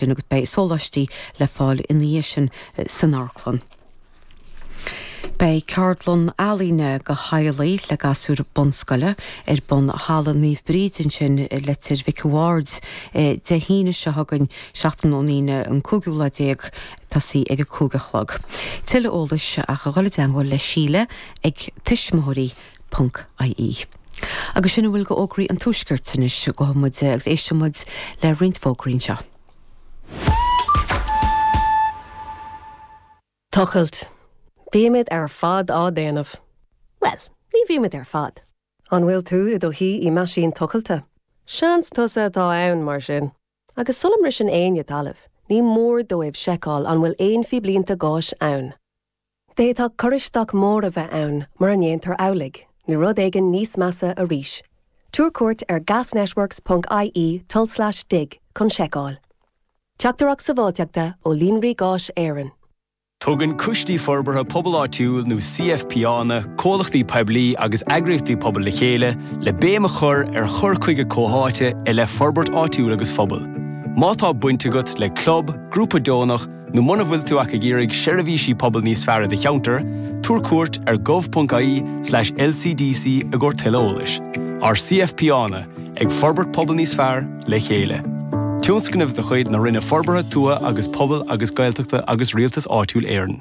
sin agus beidh sóláistí le fáil ina dhiaidh sin san amharclann. Beidh ceardlann ealaíne do theaghlaigh le gasúir bunscoile ar bun i Halla Naomh Bríd ansin i Leitir Mhic an Bhaird Dé hAoine seo chugainn, seachtain ón Aoine an cúigiú lá déag, toiseacht ag a cúig a chlog. Tuilleadh eolais ach a dhul i dteagmháil le Síle ag Tuismitheoirí na. ie. Agus sin a bhfuil d'fhógraí an Tuaiscirt anois, gabhfaidh muid agus éistfidh muid le roinnt fógraí anseo. Tochailt. Bímid ar fad á déanamh. Bhuel, ní bhímid ar fad. An bhfuil tú i do shuí i meaisín tochailte? Seans tusa atá ann, mar sin. Agus sula mbriseann éinne talamh, ní mór dóibh seiceáil an bhfuil aon phíblínte gáis ann. D'fhéadfadh cur isteach mór a bheith ann mura ndéantar amhlaidh, nó rud éigin níos measa arís. Tabhair cuairt ar gasnetworks ponc IE tulslais dig chun seiceáil. Teachtaireacht sábháilteachta ó Líonraí Gáis Éireann. Tugann Coistí Forbartha Pobail Áitiúil nó CFPÁanna comhlachtaí poiblí agus eagraíochtaí pobail le chéile le béim a chur ar chur chuige comhtháite i leith forbairt áitiúil agus phobail. Má tá baint agat le club, grúpa deonach, Nó muna bhfuil tú ach ag iarraidh seirbhísí pobail níos fearr i do cheantar, tabhair cuairt ar gov.ie/lcdc i gcomhair tuilleadh eolais. Ár CFPÁanna, ag forbairt pobal níos fearr, le chéile. Tionscnamh de chuid na Roinne Forbartha Tuaithe agus Pobail agus Gaeltachta agus Rialtas Áitiúil Éireann.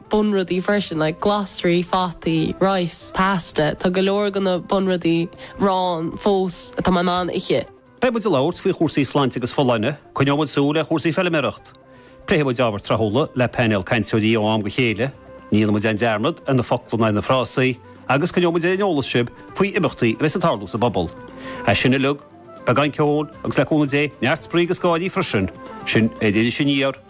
bunrudaí freisin, like glasraí, fataí, rice, pasta, tá go leor de na bunrudaí ann fós atá mé in ann a ithe. Beidh muid ag labhairt faoi chúrsaí sláinte agus folláine, coinneoidh muid súil ar chúrsaí feiliméaracht, pléifidh muid ábhar tráthúla le painéal cainteoirí ó am go chéile, ní dhéanfaidh muid aon dearmad ar na focla ná ar na frásaí, agus coinneoidh muid ar an eolas sibh faoi imeachtaí a bheas ag tarlú sa bpobal. É sin uilig, beagán ceoil agus le cúnamh Dé, neart spraoi agus gáirí freisin, sin ar Iris Aniar.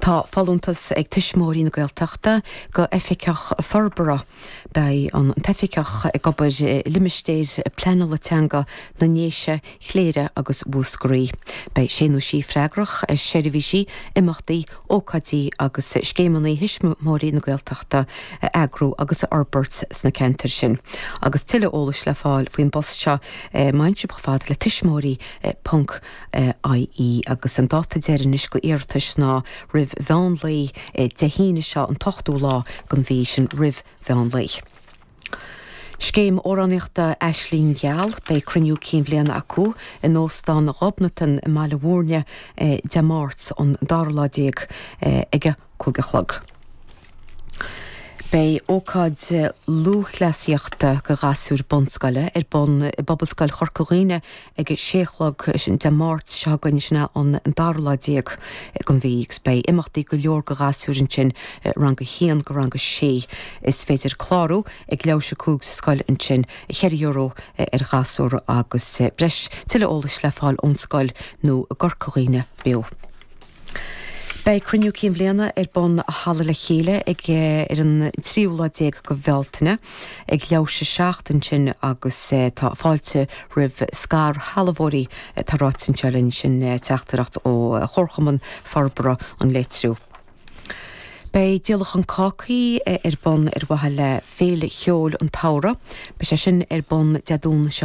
Tá folúntas ag Tuismitheoirí na Gaeltachta do Oifigeach Forbartha. Beidh an t-oifigeach ag obair i limistéir pleanála teanga na nDéise, Chléire agus Mhúscraí. Beidh sé nó sí freagrach as seirbhísí, imeachtaí, ócáidí agus scéimeanna Thuismitheoirí na Gaeltachta a eagrú agus a fhorbairt sna ceantair sin. Agus tuilleadh eolais le fáil faoin bpost seo ach, má théann sibh chomh fada le tuismitheoirí. ie. Agus an dáta deireanais do iarratais ná roimh mheán lae Dé hAoine seo an t-ochtú lá den mhí sin roimh mheán lae. Scéim Amhránaíochta Aisling Gheal, Beidh cruinniú cinn bhliana acu in Óstán Ghobnatan i mBaile Mhúirne Dé Máirt an dara lá déag ag a. cúig a chlog. Beidh ócáid lúthchleasaíochta do ghasúir bunscoile ar bun i bPobalscoil Chorca Dhuibhne ag a sé a chlog, sin Dé Máirt seo chugainn, sin é an dara lá déag den mhí, agus beidh imeachtaí go leor do ghasúir ansin, rang a haon go rang a sé. Is féidir clárú ag leathuair tar éis a cúig sa scoil ansin, ceithre euro ar ghasúr agus breis. Tuilleadh eolais le fáil ón scoil nó i gCorca Dhuibhne Beo. Beidh Cruinniú Cinn Bhliana ar bun i Halla Le Chéile ag ar an tríú lá déag de Bhealtaine. Ag leathuair tar éis a seacht ansin agus tá fáilte roimh scairshealbhóirí. Tá ráite anseo linn sin teachtaireacht ó Chomharchumann Forbartha an Leitriú. Beidh Díolachán Cácaí ar bun ar mhaithe le Féile Cheoil an tSamhraidh. Beidh sé sin ar bun Dé Domhnaigh seo,